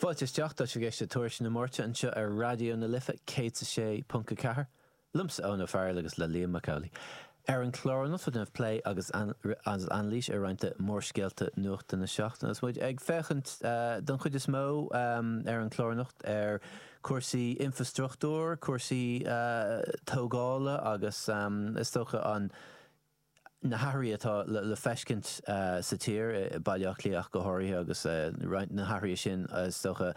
Fáilte isteach, tá tú ag éisteacht le Tuairisc na Máirte anseo ar Raidió na Life 106.4, liomsa Eoin Ó Fearghail agus le Liam Mac Amhlaigh. Ar an chlár anocht déanfar plé agus anailís ar roinnt de mhórscéalta nuachta na seachtaine agus muid ag féachaint don chuid is mó ar an chlár anocht ar chúrsaí infreastruchtúir, cúrsaí tógála agus is dócha an. na hathruithe atá le feiscint sa tír, i Baile Átha Cliath ach go háirithe, agus roinnt de na hathruithe sin, is dócha,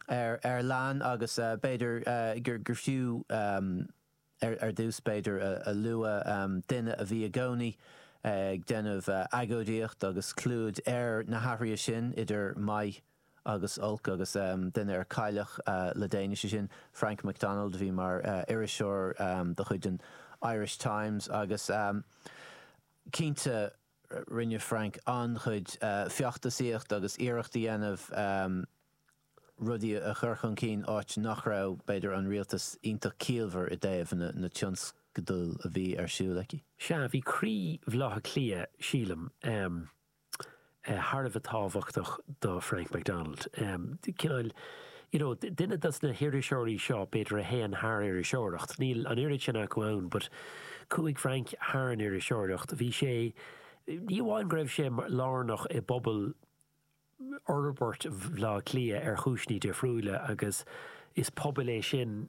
faraor léan agus b'fhéidir gur fiú ar dtús, b'fhéidir, a lua duine a bhí i gcónaí ag déanamh agóidíocht agus clúdach ar na hathruithe sin, idir maith agus olc agus duine a cailleadh le déanaí, sé sin Frank McDonald a bhí mar iriseoir de chuid an Irish Times agus cinnte rinne Frank an-chuid feachtasaíocht agus iarracht a dhéanamh rudaí a chur chun cinn áit nach raibh, b'fhéidir, an rialtas iontach ciallmhar i dtaobh na tionscadail a bhí ar siúl aici. Sea, bhí croí Bhaile Átha Cliath, sílim. thar a bheith tábhachtach do Frank McDonald. Cineál, you know, duine dos na hiriseoirí seo, b'fhéidir, a théann thar iriseoireacht. Níl an oiread sin acu ann but chuaigh Frank thar an iriseoireacht. Bhí sé, ní amháin go raibh sé lárnach i bpobal fhorbairt Bhaile Átha Cliath ar chúiseanna difriúila agus is pobal é sin,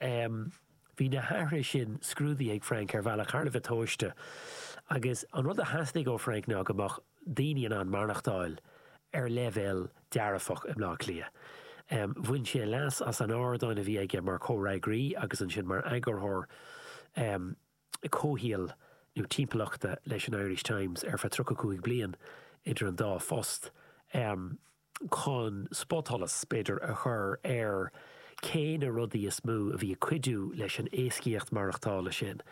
Em bhí na hathruithe sin scrúdaithe ag Frank ar bhealach thar a bheith tomhaiste agus an rud a theastaigh ó Frank ná go mbeadh daoine in ann maireachtáil ar leibhéal dearfach i mBleá Cliath. Em bhain sé leas as an ardán a bhí aige mar chomhfhreagraí agus ansin mar eagarthóir em comhshaoil nó timpeallachta leis an Irish Times ar feadh tríocha cúig bliain idir an dá phost chun spotsholas, b'fhéidir, a chur ar cé na rudaí is mó a bhí ag cuidiú leis an éascaíocht mhaireachtála sin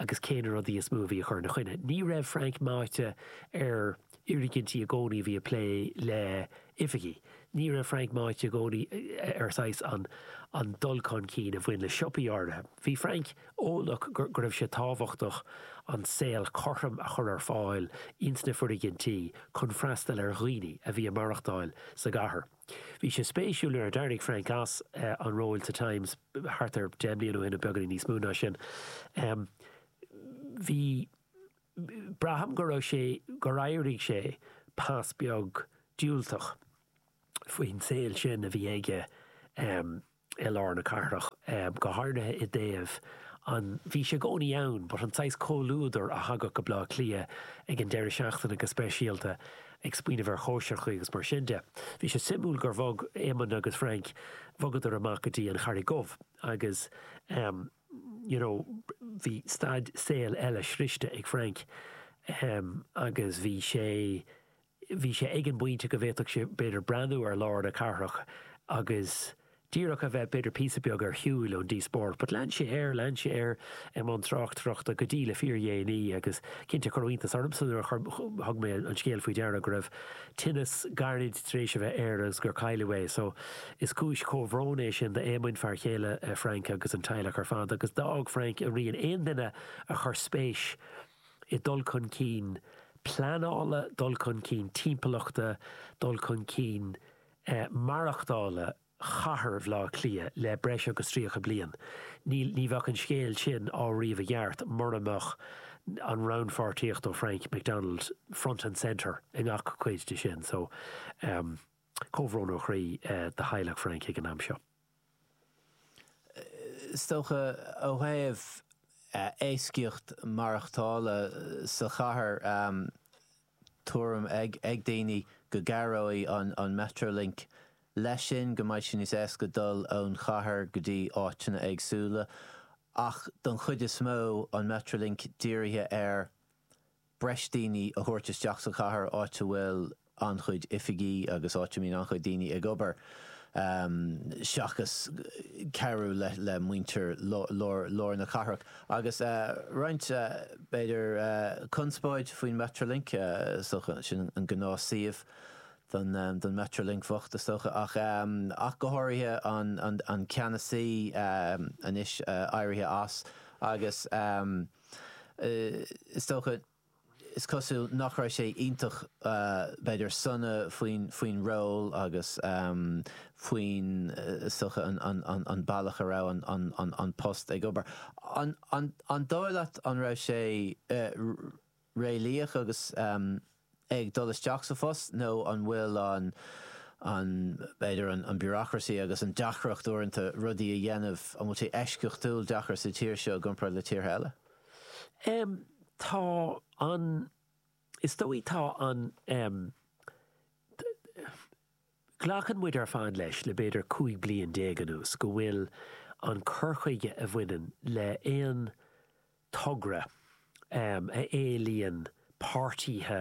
agus cé na rudaí is mó a bhí ag cur ina choinne. Ní raibh Frank meáite ar fhoirgintí i gcónaí a bhí ag plé le oifigí. Ní raibh Frank meáite i gcónaí ar saghas an dul chun cinn a bhain le siopaí áirithe. Bhí Frank. eolach go raibh sé tábhachtach an saol cothrom a chur ar fáil ins na foirgintí chun freastal ar dhaoine a bhí ag maireachtáil sa gcathair. Bhí sé spéisiúil nuair a d'éirigh Frank as an ról sa Times thart ar deich mbliana ó shin nó beagáinín níos mó ná sin, bhí, braithim go raibh sé, gur éirigh sé pas beag diúltach faoin saol sin a bhí aige. i lár na cathrach, go háirithe i dtaobh an Bhí sé i gcónaí ann but an saghas comhluadar a thagadh go Baile Átha Cliath ag an deireadh seachtaine go speisialta ag smaoineamh ar chóisireacha agus mar sin de. Bhí sé suimiúil gur bhog Éamonn agus Frank bhogadar amach go dtí an Charraig Dhubh agus you know bhí staid saol eile sroichte ag Frank em agus bhí sé bhí sé ag an bpointe go bhféadfadh sé, b'fhéidir, breathnú ar lár na cathrach agus díreach a bheith, b'fhéidir, píosa beag ar shiúil ón díospóireacht. But lean sé air, lean sé air i mbun tráchtaireachta go dtí le fíordhéanaí agus cinnte chuir iontas ormsa nuair a thug mé an scéal faoi deara go raibh tinneas gairid tar éis a bheith air agus gur cailleadh é. So is cúis chomhbhróin é sin d'Éamonn, fear céile Frank agus an teaghlach ar fad agus d'fhág Frank a rian, aon duine a chuir spéis i dul chun cinn pleanála, dul chun cinn timpeallachta, dul chun cinn maireachtála chathair Bhaile Átha Cliath le breis agus tríocha bliain. Ní bheadh an scéal sin á ríomh i gceart murab an rannpháirtíocht ó Frank McDonald front and centre i ngach cuid de sin. So, comhbhrón ó chroí do theaghlach Frank ag an am seo. Is dócha, ó thaobh éascaíocht maireachtála sa chathair, tuairim ag daoine go gcabhróidh an Metrolink leis sin, go mbeidh sé níos éasca dul ón chathair go dtí áiteanna éagsúla. Ach don chuid is mó, an Metrolink dírithe ar breis daoine a thabhairt isteach sa chathair, áit a bhfuil an-chuid oifigí agus áit a mbíonn an-chuid daoine ag obair, seachas cabhrú le muintir lár na cathrach. Agus roinnt, b'fhéidir, conspóid faoin Metrolink, is dócha. Sin an gnáth suíomh do don Metrolink bocht, is dócha. Ach, ach go háirithe an ceannasaí, anois éirithe as, agus. is dócha, is cosúil, nach raibh sé iontach, b'fhéidir, sona faoin ról agus faoin, is dócha, an bealach a raibh an post ag obair. An dóigh leat an raibh sé réalaíoch agus. ag dul isteach sa phost nó an bhfuil an, an, b'fhéidir an, an bureaucracy agus an deacracht uaireanta rudaí a dhéanamh, an bhfuil sé eisceachtúil deacair sa tír seo i gcomparáid le tíortha eile? Em, tá an, is dóigh tá an, em, Glacann muid ar fad leis, le b'fhéidir 15 bliain anuas, go bhfuil an cur chuige a bhaineann le haon togra a éilíonn páirtíthe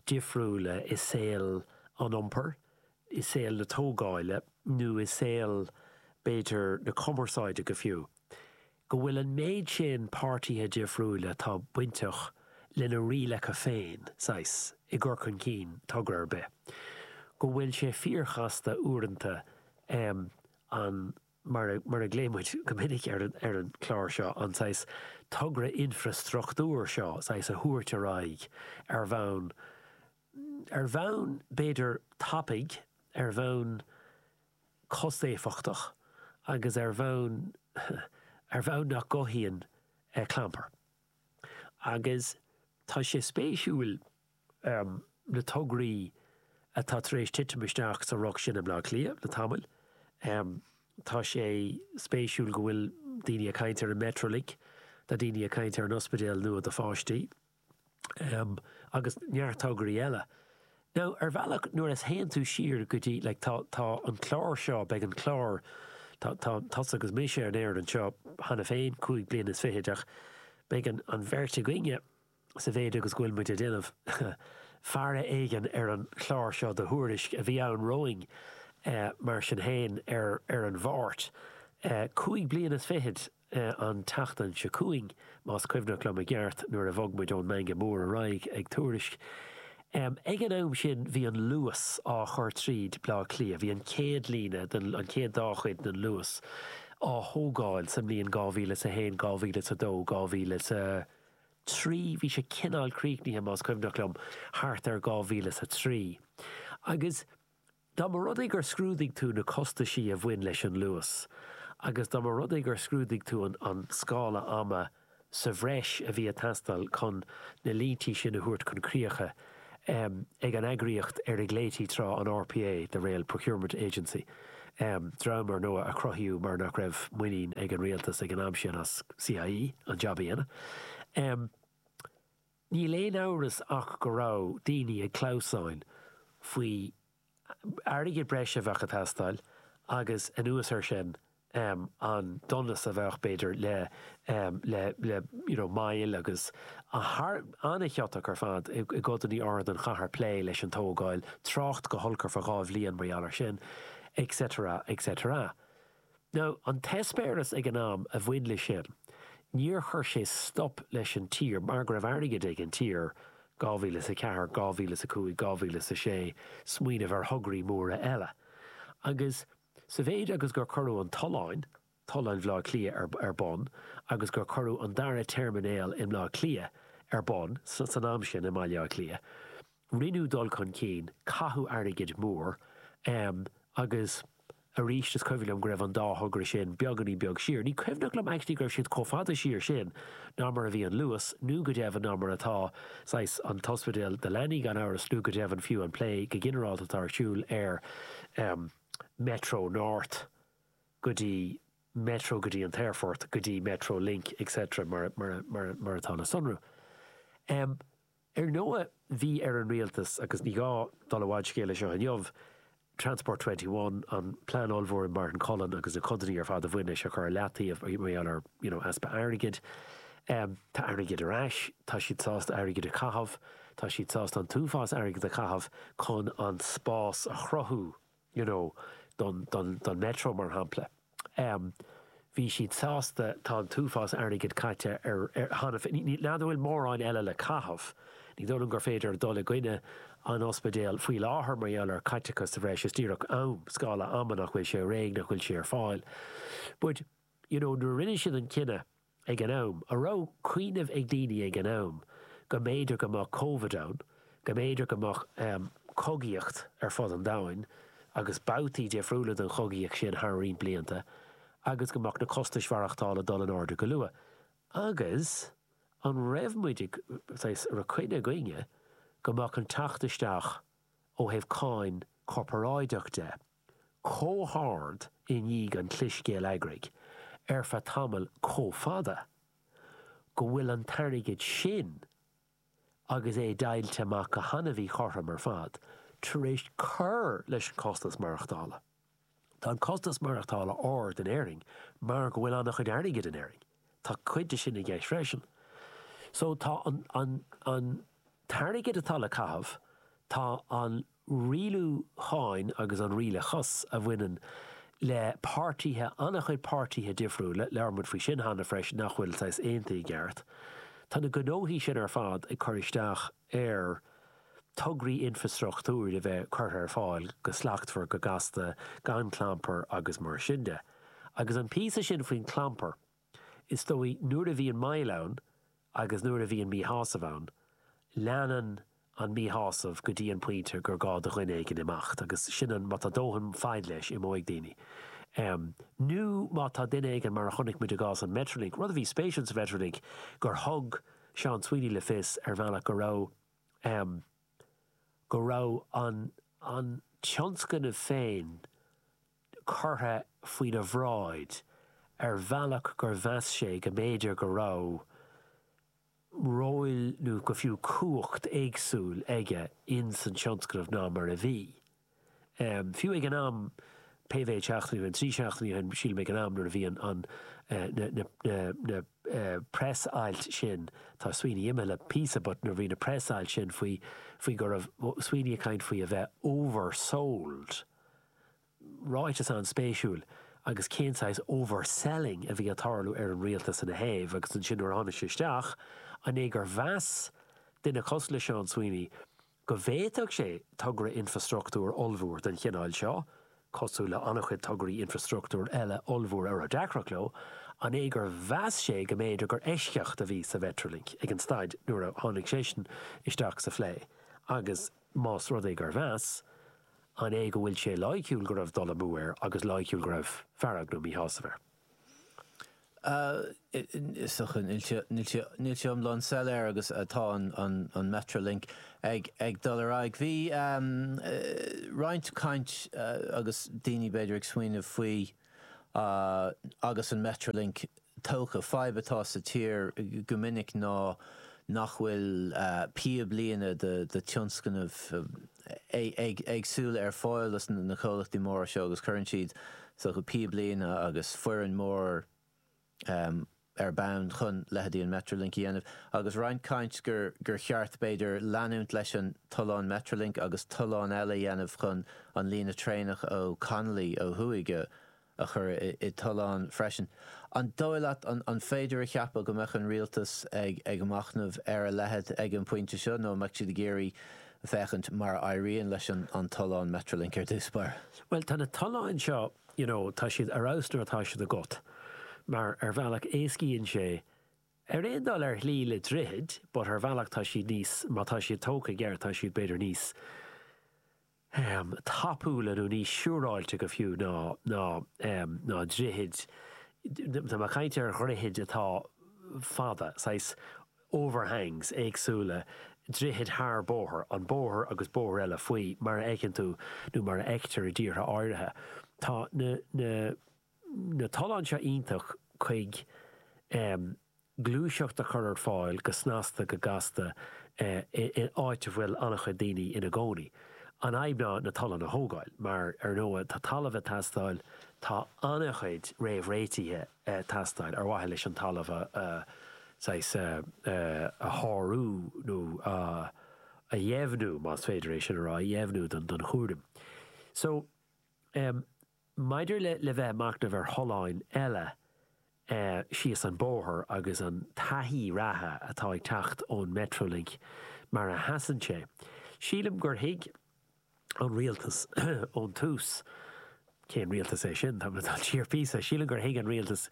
difriúla i saol an iompair, i saol na tógáile nó i saol b'fhéidir na cumarsáide go fiú, go bhfuil an méid sin páirtithe difriúil atá bainteach lena rialacha féin, saghas, i gcur chun cinn togra ar bith, go bhfuil sé fíorchasta uaireanta an, mar a ghlaonn muid go minic ar an chlár seo, an saghas togra infreastruchtúir seo, saghas, a thabhairt ar aghaidh ar bhonn ar bhonn, b'fhéidir, tapaidh, ar bhonn costéifeachtach agus ar bhonn ar bhonn nach gcothaíonn clampar. Agus tá sé spéisiúil na tograí atá tar éis titim isteach sa ruc sin i mBleá Cliath le tamall, tá sé spéisiúil go bhfuil daoine ag caint ar an Metrolink, tá daoine ag caint ar an ospidéal nua do pháistí. em, agus neart tograí eile. Nó, ar bhealach, nuair a théann tú siar go dtí, like, tá, tá an clár seo, beidh an clár, tá, tá tusa agus mise ar an aer anseo cheana féin, cúig bliana is fichid, ach beidh an, an bheirt againne, sa mhéid agus go bhfuil muid ag déanamh faire éigin ar an chlár seo de Thuairisc a bhí ann romhainn, eh, mar sin féin, ar, ar an Mháirt, eh, cúig bliana is fichid, an tseachtain seo chugainn, más cuimhneach liom i gceart, nuair a bhog muid ón Mangó Mór ar aghaidh ag Tuairisc. Ag an am sin, bhí an Luas á chur tríd Bleá Cliath. Bhí an chéad líne den, an chéad dá chuid den Luas á thógáil sa mbliain 2000 is a haon, 2000 is a dó, 2000 is a trí. Bhí sé cineál críochnaithe, más cuimhneach liom, thart ar 2000 is a trí. Agus Dá mba rud é gur scrúdaigh tú na costaisí a bhain leis an luas agus dá mba rud é gur scrúdaigh tú an scála ama sa bhreis a bhí ag teastáil chun na líntí sin a thabhairt chun críche ag an eagraíocht ar a ghlaoití tráth an RPA, the Rail Procurement Agency, dream, ar ndóigh, a cruthaíodh mar nach raibh muinín ag an Rialtas ag an am sin as CIE an jab a dhéanamh. Níl aon amhras ach go raibh daoine ag clamhsán faoi airgead breise a bheadh ag teastáil agus anuas ar sin an donas a bheadh, b'fhéidir, le you know moill agus é a bheith an-chiotach ar fad i gcodanna áirid den chathair plé leis an tógáil, trácht go holc ar feadh dhá bhliain mar gheall ar sin et cetera, et cetera. Nó an t-eispéireas ag an am a bhain leis sin, níor chuir sé stop leis an tír mar go raibh airgead ag an tír, 2004, 2005, 2006, smaoineamh ar thograí móra eile. Agus sa mhéid agus gur cuireadh an tollán, tollán Bhleá Cliath, ar ar bun agus gur cuireadh an dara teirminéal i mBleá Cliath ar bun san am sin i mBaile Átha Cliath, Rinneadh dul chun cinn, caitheadh airgead mór agus arís is cuimhin liom go raibh an dá thogra sin beagáinín beag siar. Ní cuimhneach liom actually go raibh siad chomh fada siar sin ná mar a bhí an Luas nó go deimhin ná mar atá saghas an t-ospidéal do leanaí gan amhras nó go deimhin fiú an plé go ginearálta atá ar siúl ar Metro North go dtí Metro go dtí an t-aerfort go dtí Metro Link etc mar atá le sonrú. Ar ndóigh, bhí ar an Rialtas, agus ní gá dul i bhfad scéil seo inniu, Transport Twenty One, an plean ollmhór Martin Cullen agus na codanna ar fad a bhain leis a chur ar leataobh mar gheall ar, you know, easpa airgid. Tá airgead ar ais, tá siad sásta airgead a chaitheamh, tá siad sásta an t-uafás airgid a chaitheamh chun an spás a chruthú. you know, don, don, don Metro, mar shampla. Um, bhí siad sásta, tá an t-uafás airgid caite air cheana féin, nach bhfuil mórán eile le caitheamh. Ní dóigh liom gur féidir dul i gcoinne an ospidéil faoi láthair mar gheall ar chaiteachas sa bhreis, is díreach am, scála ama nach bhfuil sé réidh, nach bhfuil sé ar fáil. But, you know, nuair a rinne siad an cinneadh, Ag an am, an raibh cuimhneamh ag daoine ag an am go mb'fhéidir go mbeadh Covid ann, go mb'fhéidir go mbeadh cogaíocht ar fud an domhain, agus babhtaí difriúla den chogaíocht sin thar roinnt blianta, agus go mbeadh na costais mhaireachtála ag dul in airde go luath, agus an raibh muid ag, saghas, an raibh coinne againne go mbeadh an teacht isteach ó thaobh cáin corparáideach de, chomh hard i ndiaidh an chlis gheilleagraigh ar feadh tamaill chomh fada go bhfuil an t-airgead sin agus é deighilte amach go han-mhíchothrom ar fad tar éis cur leis an chostas maireachtála. Tá an costas maireachtála ard in Éirinn mar go bhfuil an-chuid airgid in Éirinn. Tá cuid de sin i gceist freisin. So tá an t-airgead atá le caitheamh, tá an. rialúcháin agus an rialachas a bhaineann le páirtithe, an-chuid páirtithe difriúla, labhair muid faoi sin cheana freisin, nach bhfuil saghas aontaithe i gceart. Tá na gnóthaí sin ar fad ag cur isteach ar tograí infreastruchtúir a bheith curtha ar fáil go slachtmhar, go gasta, gan clampar agus mar sin de. Agus an píosa sin faoin chlampar, Is dóigh nuair a bhíonn moill ann agus nuair a bhíonn míshásamh ann, leanann an míshásamh go dtí an pointe gur gá do dhuine éigin imeacht agus sin an, má tá dóthain faid leis, imeoidh daoine. Nó má tá duine éigin, mar a chonaic muid i gcás an Mhetrolink, rud a bhí spéisiúil sa Mhetrolink gur thug Seán Sweeney le fios ar bhealach go raibh, go raibh an tionscnamh féin curtha faoina bhráid ar bhealach gur mheas sé go mb'fhéidir go raibh róil nó go fiú cumhacht éagsúil aige in san tionscnamh ná mar a bhí. Fiú ag an am, pé mhéid seachtainí ó shin, trí seachtainí ó shin sílim ag an am nuair a bhí an na preas-ailt sin, tá Sweeney imithe le píosa but nuair a bhí na preas-ailt sin faoi faoi go raibh Sweeney ag caint faoi a bheith oversold, Ráiteas an-spéisiúil. Agus cén saghas overselling a bhí ag tarlú ar an rialtas ina thaobh agus ansin nuair a tháinig sé isteach, an é gur mheas duine cosúil le Seán Sweeney go bhféadfadh sé togra infreastruchtúir ollmhór den chineál seo, cosúil le an-chuid tograí infreastruchtúir eile ollmhóra a raibh deacracht leo, an é gur mheas sé go mb'fhéidir gur eisceacht a bhí sa Mhetrolink ag an staid nuair a tháinig seisean isteach sa phlé agus más rud é gur mheas, An é go bhfuil sé loighciúil go raibh dul amú air agus loighciúil go raibh fearg nó míshásamh air? Níl sé iomlán soiléir agus tá an Metrolink ag dul ar aghaidh. Bhí roinnt caint agus daoine b'fhéidir ag smaoineamh faoi agus an Metrolink tógtha. Fadhb atá sa tír go minic ná nach bhfuil píoblíne do tionscnaimh éagsúla ar fáil do na comhlachtaí móra seo agus cuireann siad saghas píoblíne agus foireann mór, ar bun chun leithéidí an Metrolink a dhéanamh agus roinnt caint gur gur cheart b'fhéidir leanúint leis an tollán Metrolink agus tollán eile a dhéanamh chun an líne traenach ó Connolly ó thuaidh a a chur i dtollán freisin. An dóigh leat an an féidir a cheapadh go mbeadh an Rialtas ag ag machnamh ar a leithéid ag an bpointe seo nó an mbeadh siad ag iarraidh féachaint mar a éiríonn leis an an tollán Metrolink ar dtús báire? Bhuel tá na tolláin seo you know, tá siad ar fheabhas nuair atá siad agat, mar ar bhealach éascaíonn sé, ar aon dul ar shlí le droichid but ar bhealach tá siad níos, má tá siad tógtha i gceart tá siad b'fhéidir níos ehm tapúla nó níos siúráilte go fiú ná ná ehm ná droichid, tá mé ag caint ar dhroichid atá fada, saghas, overhangs, éagsúla, droichid thar bóthar, an bóthar agus bóithre eile faoi mar a fheiceann tú nó mar a fheictear i dtíortha áirithe. Tá na na na tolláin seo iontach chuig em gluaiseacht a chur ar fáil go snasta go gasta eh in áit a bhfuil an-chuid daoine ina gcónaí. An fhadhb ná na tolláin a thógáil mar ar ndóigh tá talamh ag teastáil, tá an-chuid réamh-réitithe ag teastáil ar mhaithe leis an talamh a saghas a shárú nó a dheimhniú, más féidir é sin a rá, a dheimhniú don chúram. So, em, maidir le bheith ag machnamh ar tholláin eile síos an bóthar agus an taithí reatha atá ag teacht ón Metrolink mar a sheasann sé, sílim gur thuig, an rialtas ón tús. Cén rialtas é sin? Tá mé ag dul siar píosa. Sílim gur thuig an rialtas,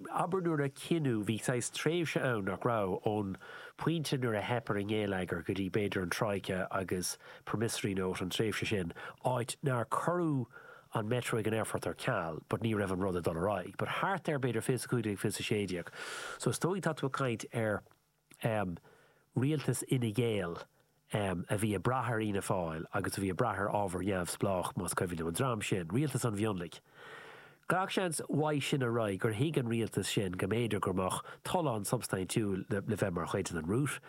abair nuair a cinneadh, bhí saghas tréimhse ann, nach raibh, ón pointe nuair a theip ar an ngeilleagar go dtí b'fhéidir an troika agus promissory note, an tréimhse sin, áit nár cuireadh an metro chuig an aerfort ar ceal but ní raibh an rud ag dul ar aghaidh. But thart ar b'fhéidir 2015, 2016. So is dóigh tá tú ag caint ar. um Rialtas Fhine Gael um a bhí ag brath ar Fhianna Fáil agus a bhí ag brath ar ábhar neamhspleách, más cuimhin liom, an dream sin, Rialtas an Mhionlaigh. Gach seans uaidh sin ar aghaidh gur thuig an Rialtas sin go mb'fhéidir go mbeadh tollán substaintiúil le bheith mar chuid den route.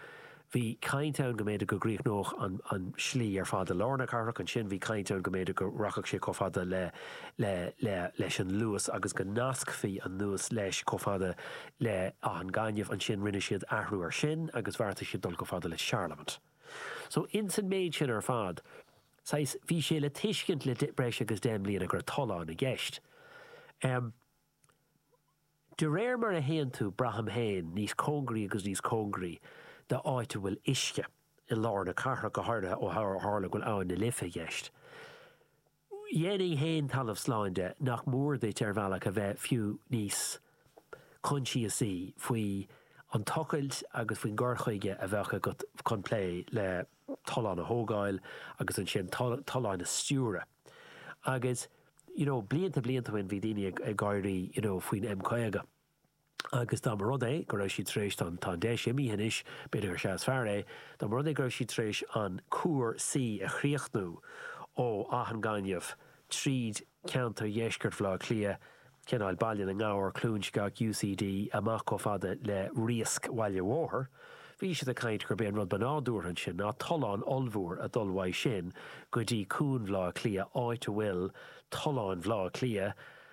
Bhí caint ann go mb'fhéidir go gcríochnódh an slí ar fad i lár na cathrach, ansin bhí caint ann go mb'fhéidir go rachadh sé chomh fada le leis an Luas agus go nascfaí an Luas leis chomh fada le Áth an Ghainimh. Ansin rinne siad athrú ar sin agus bheartaigh siad dul chomh fada le Charlemont. So, ins an méid sin ar fad, saghas, bhí sé le tuiscint le breis agus deich mbliana go raibh tollán i gceist. Em. de réir mar a théann tú, braithim féin, níos cóngaraí agus níos cóngaraí d'áit a bhfuil uisce, i lár na cathrach go háirithe ó tharla go bhfuil Abhainn na Life i gceist, dhéanfainn féin talamh slán de nach mór duit ar bhealach a bheith fiú níos coinsiasaí faoi an tochailt agus faoin gcur chuige a bheadh agat chun plé le tollán a thógáil agus ansin tollán a stiúradh agus, you know, blianta blianta ó shin bhí daoine ag gáirí, you know, faoin M50. agus dá mba rud é go raibh siad tar éis an, tá an deis imíthe anois, b'fhéidir gur sea is fearr é, dá mba rud é go raibh siad tar éis an cuar C a chríochnú ó Áth an Ghainimh, tríd ceantar dheisceart Bhaile Átha Cliath, cineál, Baile na nGabhar, Cluain Sceach, UCD, amach chomh fada le Riasc Bhaile an Bhóthair, bhí siad ag caint gurb é an rud ba nádúrtha ansin ná tollán ollmhór a dhul uaidh sin go dtí Cuan Bhaile Átha Cliath, áit a bhfuil tolláin Bhaile Átha Cliath,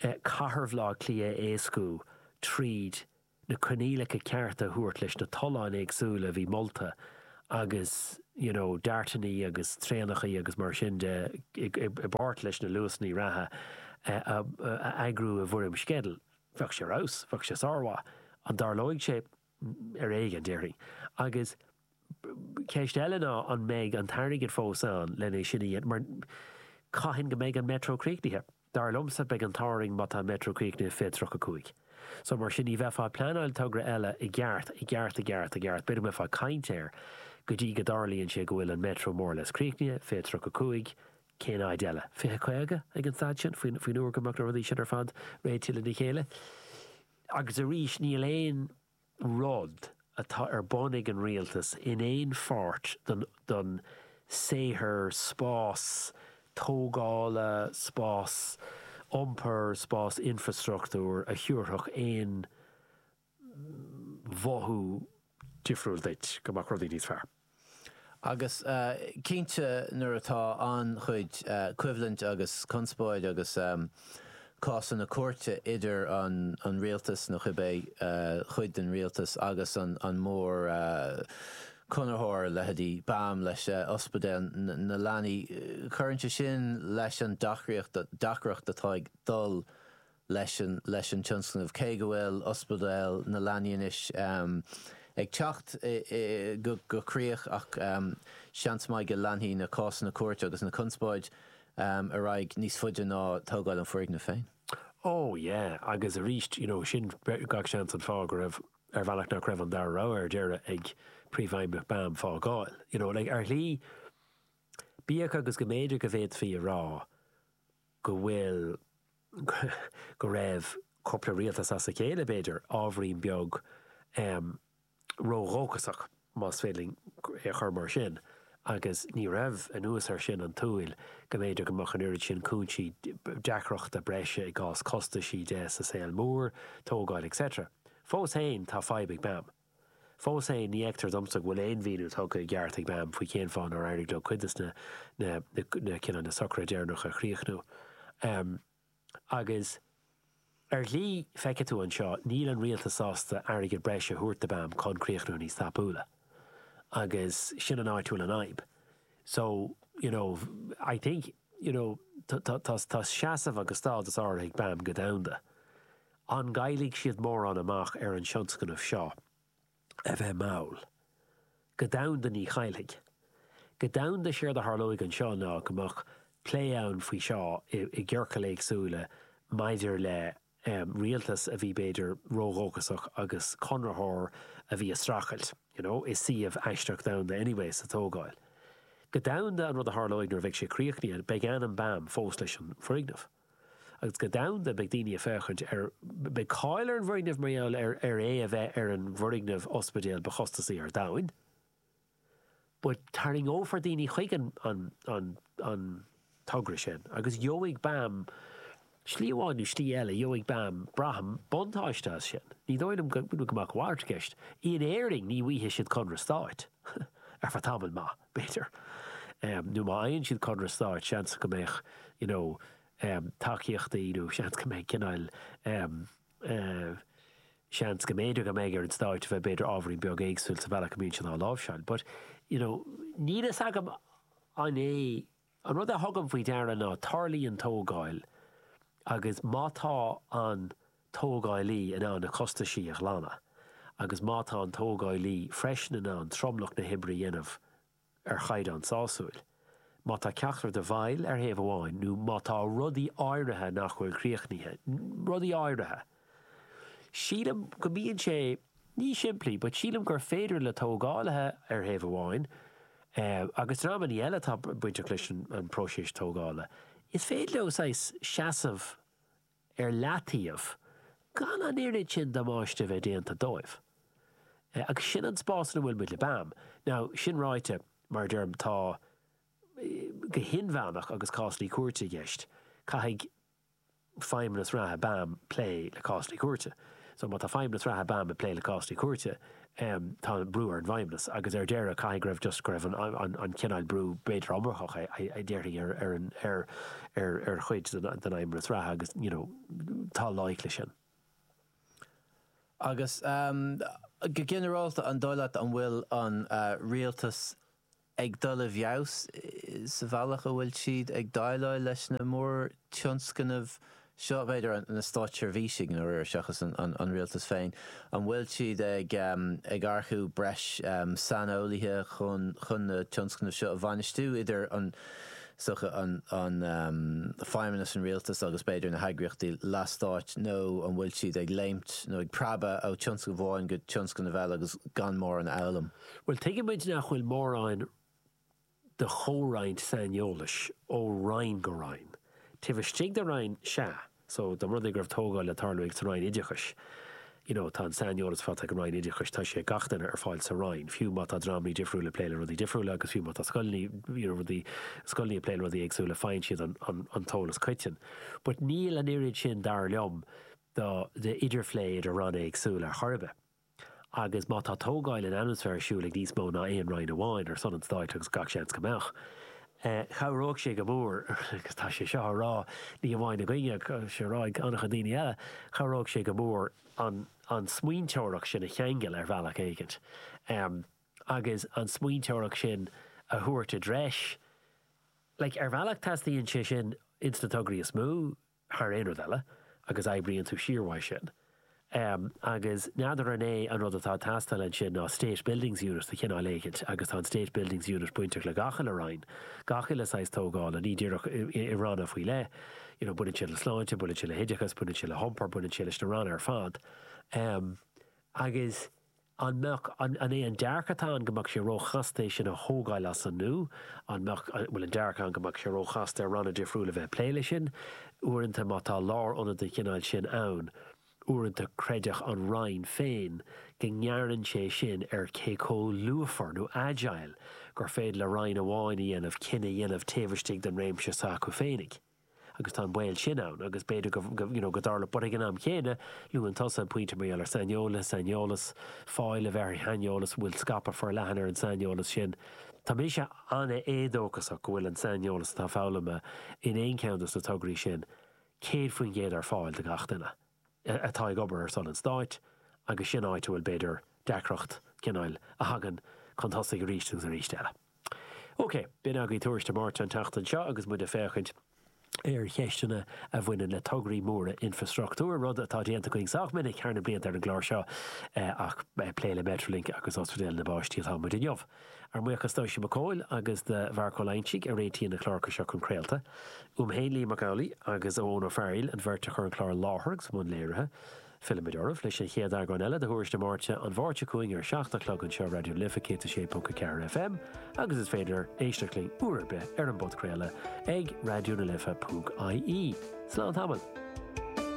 chathair Bhaile Átha Cliath a éascú tríd na coinníollacha cearta a thabhairt leis na tolláin éagsúla a bhí molta agus you know DARTannaí agus traenachaí agus mar sin de i bpáirt leis na Luasannaí reatha a eagrú i bhfoirm sceidil. Bheadh sé ar fheabhas, bheadh sé sármhaith. An dtarlóidh sé? ar éigean, déarfainn. Agus ceist eile ná an mbeidh an t-airgead fós ann lena é sin mar caithfidh go mbeidh an Metro críochnaithe. Dar liomsa, beidh an t-ádh orainn má tá an Metro críochnaithe fiche 35. So mar sin ní bheifeá ag pleanáil togra eile i gceart, i gceart, i gceart, i gceart, b'fhéidir go mbeifeá ag caint air go dtí go dtarlaíonn sé go bhfuil an Metro more or less críochnaithe, fiche 35, cén áit eile? Fiche, caoga ag an staid sin, faoin uair go mbeadh na rudaí sin ar fad réitithe lena chéile. Agus arís, níl aon rud atá ar bun ag an Rialtas in aon pháirt don saothar, spás tógála, spás iompair, spás infrastruchtúir, a thabharfadh aon mhothú difriúil duit go mbeadh rudaí níos fearr. Agus cinnte nuair atá an-chuid coimhlint agus conspóid agus cásanna cúirte idir an rialtas, nó cibé cuid den rialtas, agus an mórchonraitheoir, leithéidí BAM leis, Ospidéal na Leanaí, cuireann sé sin leis an deacraíocht, deacracht atá ag dul leis an tionscnamh. Cé go bhfuil Ospidéal na Leanaí anois ag teacht go críoch, ach seans maith go leanfaidh na cásanna cúirte agus na conspóid ar aghaidh níos faide ná tógáil an foirgnimh féin. Ó, yeah, agus arís, you know, sin gach seans an fáth go raibh, ar bhealach, nach raibh an dara rogha ar deireadh ag Príomhfheidhmeannach BAM fágáil. You know, like, ar shlí, bíodh agus go mb'fhéidir go bhféadfaí a rá go bhfuil, go raibh cúpla rialtas as a chéile, b'fhéidir, ábhairín beag ró-dhóchasach, más féidir linn é a chur mar sin, agus ní raibh, anuas air sin, an tsúil go mb'fhéidir go mbeadh an oiread sin cúinsí deacrachta breise i gcás costaisí de sa saol mór, tógáil etc. Fós fhéin, tá fadhb ag BAM. Fós fhéin, ní fheictear domsa go bhfuil aon mhíniú tugtha i gceart ag BAM faoi cén fáth nár éirigh leo cuid de na, na, na, cineál, na socruithe deireanacha a chríochnú. Em. Agus, ar shlí, feicfidh tú anseo, níl an Rialtas sásta airgead breise a thabhairt do BAM chun críochnú níos tapúla. Agus sin an áit a bhfuil an fhadhb. So, you know, I think, you know, tá, tá, tá, tá seasamh agus stádas áirithe ag BAM go domhanda. An gcaillfidh siad mórán amach ar an tionscnamh seo? A bheith mall. Go domhanda ní chaillfidh. Go domhanda séard a tharlóidh anseo ná go mbeadh plé ann faoi seo i gciorcail éagsúla maidir le rialtas a bhí b'fhéidir ródhóchasach agus conraitheoir a bhí a streachailt you know i suíomh aisteach domhanda anyway sa tógáil. Go domhanda an rud a tharlóidh nuair a bheidh sé críochnaithe beidh ainm BAM fós leis an bhfoirgneamh. agus go domhanda beidh daoine ag féachaint ar, beidh cáil ar an bhfoirgneamh mar gheall ar é a bheith ar an bhfoirgneamh ospidéil ba chostasaí ar domhain, but tarraingeofar daoine chuig an togra sin agus gheobhaidh BAM, slí amháin nó slí eile, gheobhaidh BAM, braithim, buntáiste as sin. Ní dóigh liom go mbeadh a mhalairt i gceist. In Éirinn ní bhfaigheadh siad conradh stáit ar feadh tamaill maith. b'fhéidir. Nó má fhaigheann siad conradh stáit, seans go mbeadh you know tacaíochtaí nó seans go mbeidh cineál em. seans go mb'fhéidir go mbeidh ar an stát a bheith b'fhéidir ábhairín beag éagsúil sa bhealach a mbíonn siad á láimhseáil. But you know níl a fhios agam an é An rud a thugaim faoi deara ná tarlaíonn tógáil agus má tá an tógáilí in ann na costaisí a ghlanadh agus má tá an tógáilí freisin in ann tromlach na hoibre a dhéanamh ar chaighdeán sásúil, má tá ceachtar den bheirt ar thaobh amháin nó má tá rudaí áirithe nach bhfuil críochnaithe, rudaí áirithe! Sílim go mbíonn sé ní simplí but sílim gur féidir le tógálaithe ar thaobh amháin, agus ar aon ní eile atá bainteach leis an próiseas tógála, is féidir leo saghas seasamh ar leataobh gan an oiread sin damáiste a bheith déanta dóibh. Agus sin an spás ina bhfuil muid le BAM. Now, sin ráite, mar a deirim, tá, go hinmheánach, agus cásanna cúirte i gceist. Caithfidh Feidhmeannas reatha BAM ag plé le cásanna cúirte. So, má tá Feidhmeannas reatha BAM ag plé le cásanna cúirte, em, tá brú ar an bhFeidhmeannas agus ar deireadh caithfidh go raibh just, go raibh an, an, an cineál brú b'fhéidir iomarcach a, a déarfaí ar, ar an, ar, ar, ar chuid den, den Fheidhmeannas reatha agus, you know, tá loighic leis sin. Agus, em, go ginearálta, an dóigh leat an bhfuil an, eh, Rialtas ag dul i bhfeabhas sa bhealach a bhfuil siad ag déileáil leis na mórtionscnaimh seo, b'fhéidir na stáitseirbhísigh nó, seachas an rialtas féin, an bhfuil siad ag earcú breis saineolaithe chun na tionscnaimh seo a bhainistiú, idir an feidhmeannas, an rialtas agus b'fhéidir na heagraíochtaí leathstáit, nó an bhfuil siad ag léimt nó ag preabadh ó thionscnamh amháin go tionscnamh eile agus gan mórán a fhoghlaim? Bhuel, tuigeann muid nach bhfuil mórán de chomhroinnt saineolais ó Roinn go Roinn. Taobh istigh de Roinn, sea, so, da mba rud é go raibh tógáil le tarlú sa Roinn Oideachais, you know, tá an saineolas faighte ag an Roinn Oideachais, tá sé ag gach duine ar fáil sa Roinn, fiú má tá dreamanna difriúil ag plé le rudaí difriúla agus fiú má tá scoileanna, you know, rudaí, scoileanna ag plé le rudaí éagsúla, faigheann siad an, an, an t-eolas coiteann. But níl an oiread sin, dar liom, do, de idirphlé idir Ranna éagsúla ar chor ar bith. Agus má tá tógáil in atmaisféar ar siúl ag níos mó ná aon roinn amháin ar son an stáit, agus gach seans go mbeadh, chabhródh sé go mór, agus tá sé seo á rá ní hamháin againne ach tá sé á rá ag an-chuid daoine eile, chabhródh sé go mór an smaointeoireacht sin a cheangal ar bhealach éigint agus an smaointeoireacht sin a thabhairt i dtreis. Like, ar bhealach teastaíonn sé sin ins na tograí is mó. thar aon rud eile, agus oibríonn tú siar uaidh sin. Agus n'fheadar an é an rud atá ag teastáil ansin ná State Buildings Units de chineál éicint, agus tá an State Buildings Unit bainteach le gach uile roinn, gach uile saghas tógála, ní díreach i ranna faoi leith, you know baineann sé le sláinte, baineann sé le hoideachas, baineann sé le hiompar, baineann sé leis na ranna ar fad. Agus An mbeadh, an é an dearcadh atá ann go mbeadh sé ró-chasta é sin a thógáil as an nua? An mbeadh, an bhfuil an dearcadh ann go mbeadh sé ró-chasta ar ranna difriúla bheith ag plé leis sin? Uaireanta má tá lár-ionad den chineál sin ann, uaireanta creideann an Roinn féin go ngearrann sé sin ar cé comh lúfar nó agile gur féidir le Roinn amháin a dhéanamh cinneadh a dhéanamh taobh istigh den réimse s'acu féinig. agus tá an baol sin ann agus b'fhéidir go, you know, go dtarlódh, but ag an am chéanna, luann tusa an pointe mar gheall ar saineolas, saineolas, fáil a bheith ar shaineolas, an bhfuil scaipeadh forleathan ar an saineolas sin? Táimse an-éadóchasach go bhfuil an saineolas atá foghlamtha in aon cheann dos na tograí sin 100% ar fáil do gach duine. atá ag obair ar son an Stáit agus sin áit a bhfuil, b'fhéidir, deacracht, cineáil, a thagann chun tosaigh aríst agus arís eile. OK. B'in agaibh Tuairisc na Máirt an tseachtain seo agus muid ag féachaint ar cheisteanna a bhaineann le tograí móra infrastruchtúir, rud atá déanta againn sách minic thar na blianta ar an gclár seo ach plé le Metrolink agus Ospidéal na bPáistí atá muid inniu. Ár mbuíochas d'Oisín Mac Cóil agus do Mharc Ó Loingsigh a réitíonn na cláracha seo chun craolta. Uaim féin, Liam Mac Amhlaigh, agus ó Eoin Ó Fearghaíl, an bheirt a chur an clár i láthair agus i mbun léirithe. Fillfimid oraibh leis an chéad eagrán eile de Thuairisc na Máirt an Mháirt seo chugainn ar a seacht a chlog anseo Raidió na Life 106.4 FM agus is féidir éisteacht linn uair ar bith ar an bpodchraoladh ag raidionalife.ie. Slán tamaill!